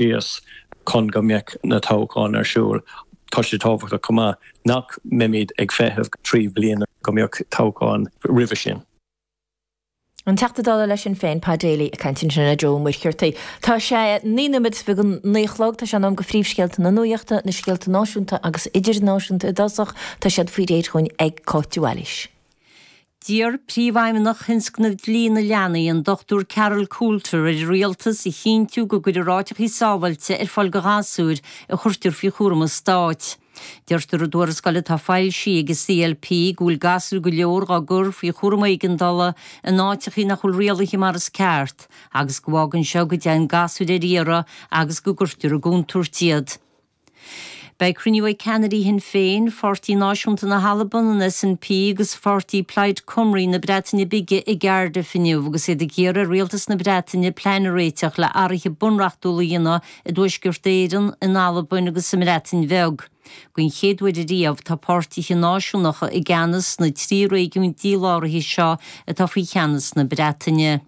síos chun go mbeadh na toghcháin ar siúl. Tá sé tábhachtach chomh maith nach mbeimid ag feitheamh trí bliana go mbeadh toghcháin roimhe sin. An Teachta Dála le Sinn Féin, Pa Daly, ag caint ansin le Joe Ó Muircheartaigh. Tá sé naoi nóiméad théis a naoi a chlog. Tá sé in am go phríomhscéalta na nuachta, na scéalta náisiúnta agus idirnáisiúnta i dtosach. Tá siad faoi réir chugainn ag Cáit de Bhailís. D'iarr Príomhfheidhmeannach Thionscnamh Dlí na Leanaí, an Dr Carol Coulter, ar an Rialtas a chinntiú go gcuirfear áiteachaí sábháilte ar fáil do ghasúir a chuirtear faoi chúram an Stáit. Deirtear i dtuarascáil atá foilsithe ag an CLP go bhfuil gasúir go leor á gcur faoi chúram éigeandála in áiteachaí nach bhfuil rialaithe mar is ceart agus go bhfágann seo go dtéann gasúir ar iarraidh agus go gcuirtear i gcontúirt iad. Beidh cruinniú ag ceannairí Shinn Féin, Pháirtí Náisiúnta na hAlban, an SNP agus Pháirtí Plaid Cymru na Breataine Bige i gCardiff inniu agus iad ag iarraidh ar Rialtas na Breataine plean a réiteach le athraithe bunreachtúla a dhéanamh i dTuaisceart Éireann, in Albain agus sa mBreatain Bheag. Don chéad uair riamh tá páirtithe náisiúnacha i gceannas sna trí réigiún díláraithe seo atá faoi cheannas na Breataine.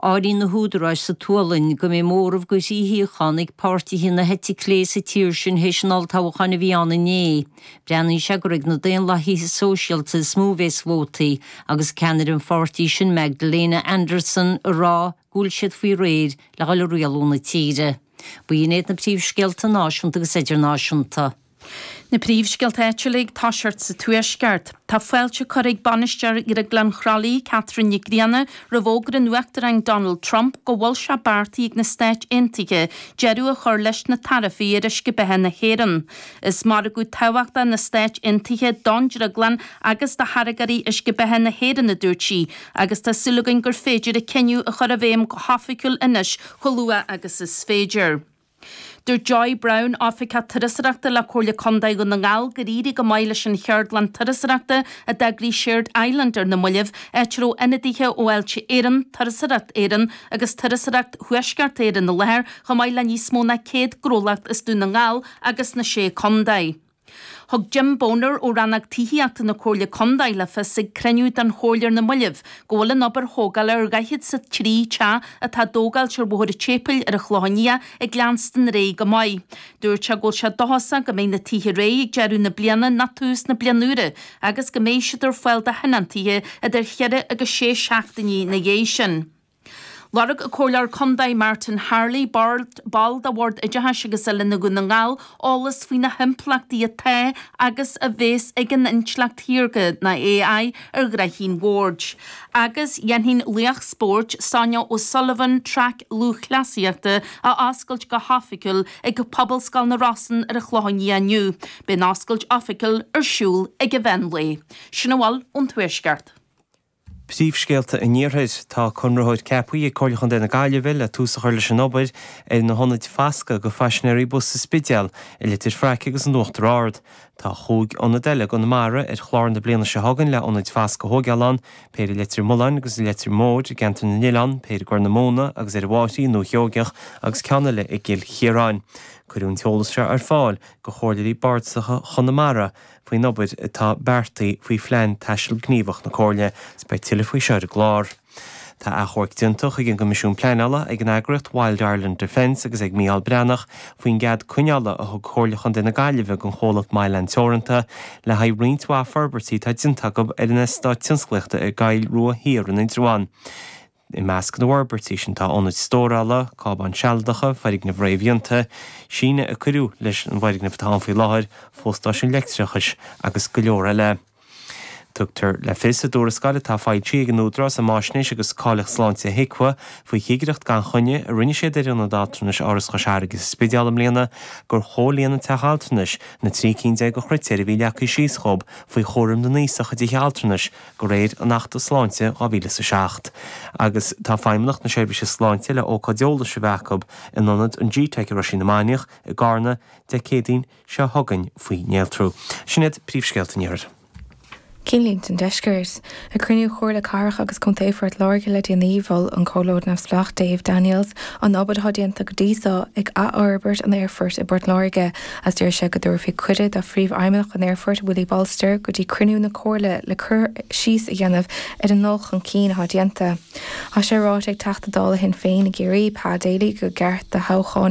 Áiríonn na húdaráis sa tSualainn go mbeidh móramh de thrí shuíochán ag páirtithe na heite clé sa tír sin théis an olltoghcháin a bhí ann inné. Breathnaíonn sé gur ag na Daonlathaithe Sóisialta is mó a bheas vótaí, agus ceannaire an pháirtí sin Magdalena Andersson ag rá go bhfuil siad faoi réir le dhul ag rialú na tíre. Ba iad na príomhscéalta náisiúnta agus idirnáisiúnta. Na príomhscéalta áitiúla, ag toiseacht sa Tuaisceart. Tá fáilte curtha ag Bainisteoir Dhrioglann Chroithlí, Catherine Nic Grianna, roimh fhógra an Uachtaráin Donald Trump go bhfuil sé beartaithe ag na Stáit Aontaithe deireadh a chur leis na taraifí ar uisce beatha na hÉireann. Is margadh tábhachtach na Stáit Aontaithe don drioglann agus do tháirgeoirí uisce beatha na hÉireann, a dúirt sí, agus tá súil againn gur féidir an cinneadh a chur i bhfeidhm go hoifigiúil anois chomh luath agus is féidir. Deir Joy Browne, Oifigeach Turasóireachta le Comhairle Contae Dhún na nGall gur éirigh go maith leis an cheardlann turasóireachta a d'eagraigh Shared Island ar na moillibh, áit a raibh ionadaithe ó Fháilte Éireann, Turasóireacht Éireann agus Turasóireacht Thuaisceart Éireann i láthair, chomh maith le níos mó ná 100 gnólacht as Dún na nGall agus na Sé Contae. Thug Jim Boner ó Rannóg Tithíochta na Comhairle Contae le fios ag cruinniú den Chomhairle ar na moillibh go bhfuil an obair thógála ar dhaichead is a trí teach atá á dtógáilt ar Bhóthar an tSéipeil ar an Chlochán Liath ag leanstan ar aghaidh go maith. Dúirt sé go bhfuil sé dóchasach go mbeidh na tithe réidh ag deireadh na bliana nó tús na bliana úire agus go mbeidh siad ar fáil do thionóntaithe idir cheithre agus sé seachtainí ina dhiaidh sin. Lorg an Comhairleoir Contae Martin Harley, ball de Bhord Oideachais agus Oiliúna Dhún na nGall, eolas faoi na himpleachtaí atá agus a bheas ag an intleacht shaorga, nó AI, ar ghnoithí an bhoird. Agus dhéanfaidh an laoch spóirt, Sonia O'Sullivan, traic lúthchleasaíochta, a oscailt go hoifigiúil ag Pobalscoil na Rosann ar an Chlochán Liath inniu. Beidh an oscailt oifigiúil ar siúl ag an mheán lae. Sin a bhfuil ón Tuaisceart. Príomhscéalta an Iarthair. Tá conraitheoir ceapaithe ag Comhairle Chontae na Gaillimhe le tús a chur leis an obair ar na hionaid fascadh go phaisinéirí bus sa Spidéal, i Leitir Fraic agus in Uachtar Ard. Tá chúig ionad eile i gConamara ar chlár na bliana seo chugainn le ionaid fascadh a thóigeáil ann, péir i Leitir Mealláin agus i Leitir Móir i gceantar na nOileán, péir i gCorr na Móna agus ar an Mám i nDúiche Sheoigheach agus ceann eile i gCill Chiaráin. Cuireadh an t-eolas seo ar fáil go chomhairleoirí bardasacha Chonamara faoin obair atá beartaithe faoi Phlean Taistil Gníomhach na Comhairle, is beidh tuilleadh faoi seo ar an gclár. Tá achomharc déanta chuig an gCoimisiún Pleanála ag an eagraíocht Wild Ireland Defence agus ag Micheál Breathnach faoin gcead coinneála a thug Comhairle Chontae na Gaillimhe don chomhlacht Mylan Teoranta le haghaidh roinnt mhaith forbairtí atá déanta acu ar an eastát tionsclaíochta i gCoill Rua Thiar in Indreabhán. I measc na bhforbairtí sin tá ionaid stórála, cábáin sealadacha, foirgnimh réamhdhéanta, síneadh a cuireadh leis an bhfoirgneamh atá ann faoi láthair, fostáisiún leictreachais agus go leor eile. Tugtar le fios i dtuarascáil atá foilsithe ag an Údarás um Fháisnéis agus Cáilíocht Sláinte, HIQA, faoi chigireacht gan choinne a rinne siad ar ionad altranais Áras Chois Fharraige sa Spidéal i mbliana gur chomhlíon an teach altranais na 13 cinn de chritéir a bhí leagtha síos dhóib faoi chúram na n-aosach i dtithe altranais de réir an Achta Sláinte 2000 is 7, agus tá Feidhmeannacht na Seirbhíse Sláinte le ócáid eolais a bheith acu in ionad an gteic i Roisín na Mainiach i gCarna Dé Céadaoin seo chugainn faoi néaltrú. Sin iad príomhscéalta an Iarthair. Cinnlínte an Deiscirt. Ag cruinniú Chomhairle Cathrach agus Contae Phort Láirge le déanaí, mhol an Comhairleoir Neamhspleách Dave Daniels an obair atá déanta go dtí seo ag athfhorbairt an aerfoirt i bPort Láirge, agus d'iarr sé go dtabharfaí cuireadh do Phríomhfheidhmeannach an Aerfoirt, Willie Bolster, go dtí cruinniú na Comhairle le cur síos a dhéanamh ar an ndul chun cinn atá déanta. Tá sé ráite ag Teachta Dála Shinn Féin i gCiarraí, Pa Daly, go gceart do thoghchán